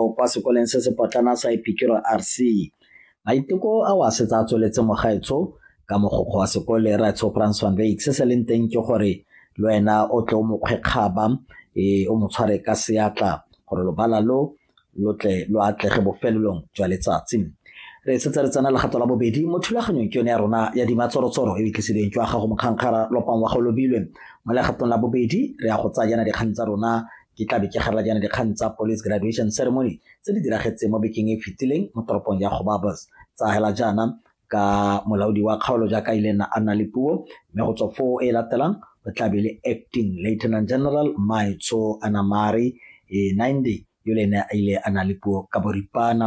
o kwa sekoleng se se potlana sa epikiro rc maiteko a o a setse a tsweletse mogaetsho ka mogokgo wa sekole ratsho frans van veik se se leng teng ke gore le wena o tle o mokgwekgaba e o mo tshware ka seatla gore lobala lo lo tle lo atlege bofelelong jwa letsatsi re setse re tsena legato la bobedi mo thulaganyong ke yone ya rona ya dimatshorotsoro e itlisedeng jwa gago mokgangkgara lopang wa go lobilwe mo legatong la bobedi re ya go tsayana dikgang tsa rona Ke tla be ke gala jaana dikgang tsa Police Graduation Ceremony tse di diragetseng mo bekeng e fetileng mo toropong ya Gobabos tsa hela jaana ka molaodi wa kgaolo jaaka ile na a nna le puo mme go tswa foo e latelang o tla be le acting lieutenant general maitsho anamari e ninde yo le ene a ile a na le puo ka boripana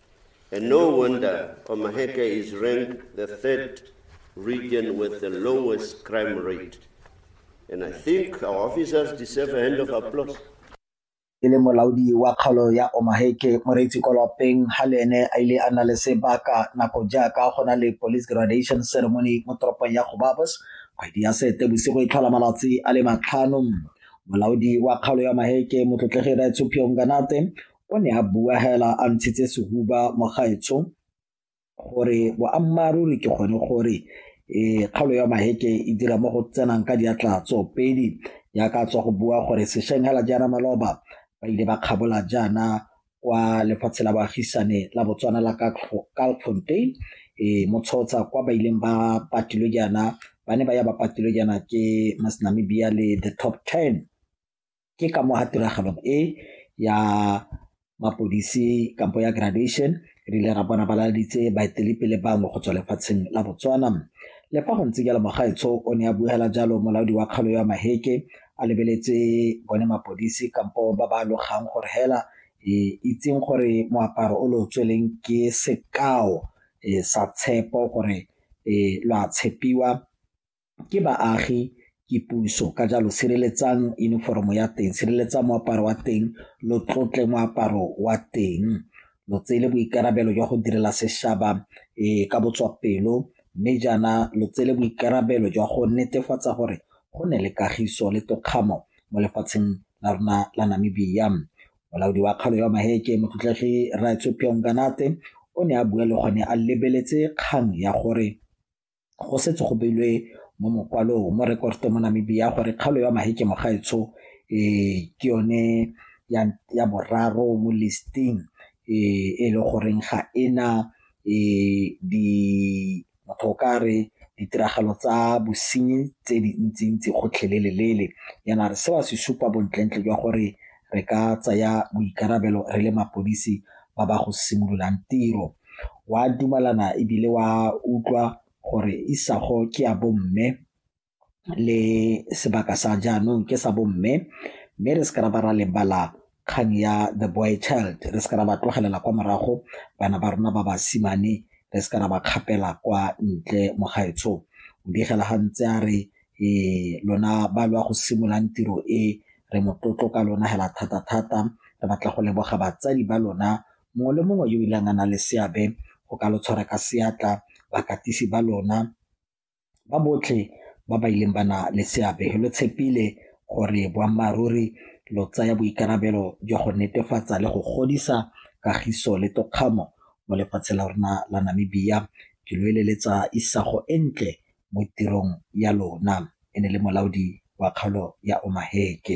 And no wonder Omaheke is ranked the third region with the lowest crime rate. And I think our officers deserve a hand of applause. e le molaodi wa kgaolo ya omaheke moreetsi kwa lwapeng ga le ene a ile a na le sebaka nako jaaka go na le police graduation ceremony mo toropong ya gobabos kgwedi ya sete bosigo e tlhola malatsi a le matlhano molaodi wa kgaolo ya maheke motlotlegi raetsophiong kanate o ne a bua hela a ntshitse sehuba mogaetsho gore boammaaruri ke gone gore um kgaolo ya maheke e dira mo go tsenang ka diatla tsoopedi jaaka tswa go bua gore sešweng hela jaana maloba ba ile ba kgabola jaana kwa lefatshe la baagisane la botswana la kalfontein um eh, motshotsha kwa ba ileng ba patilwe jaana ba ne ba ya ba patilwe jaana ke masnamibia le the top ten ke ka mo ga tiragalo e ya mapodisi kampo ya graduation re ile ra bona balaleditse baetelepele bangwe go tswa lefatsheng la botswana le fa go ntse jalo mogaetsho o ne a buela jalo molaodi wa kgalo ya maheke a lebeletse bone mapodisi kampo ba ba logang gore hela e itseng gore moaparo o lo tsweleng ke sekao e, sa tshepo gore e, lo a tshepiwa ke baagi ke puso ka jalo sireletsang uniform-o ya teng, sireletsang moaparo wa teng lo tlotle moaparo wa teng lo tsele boikarabelo jwa go direla setšhaba ka botswapelo mme jaana lo tsele boikarabelo jwa go netefatsa gore go ne le kagiso le tokgamo mo lefatsheng la rona la Namibia. Molaodi wa kgaolo ya Maheke motlotlegi Raetsho Phiyonganate o ne a bua le gone a lebeletse kgang ya gore go setse go beilwe mo mokwalong mo rekoto mo Namibia gore kgaolo ya Maheke Mogaetsho um ke yone ya boraro mo listing e e le goreng ga ena um di motho o ka re ditiragalo tsa bosenyi tse dintsintsi gotlhelelelele yana re se wa se supa bontlentle jwa gore re ka tsaya boikarabelo re le mapodisi ba ba go simololang tiro. Wa dumalana ebile wa utlwa gore isago ke ya bomme le sebaka sa jaanong ke sa bomme mme re se ka ra ba ra lebala kgang ya the boy child re se ka ra ba tlogelela kwa morago bana ba rona ba basimane re se ka ra ba kgapela kwa ntle mo gaetsho o digela ga ntse a re um lona ba lo ya go simololang tiro e re motlotlo ka lona hela thata-thata re batla go leboga batsadi ba lona mongwe le mongwe yo ileng a na le seabe go ka lo tshwara ka seatla bakatisi ba lona ba botlhe ba ba ileng ba na le seabe lo tshepile gore boammaaruri lo tsaya boikarabelo jwa go netefatsa le go godisa kagiso le tokgamo mo lefatshe la rona la Namibia ke lo eleletsa isago e ntle mo tirong ya lona, e ne e le molaodi wa kgaolo ya Omaheke.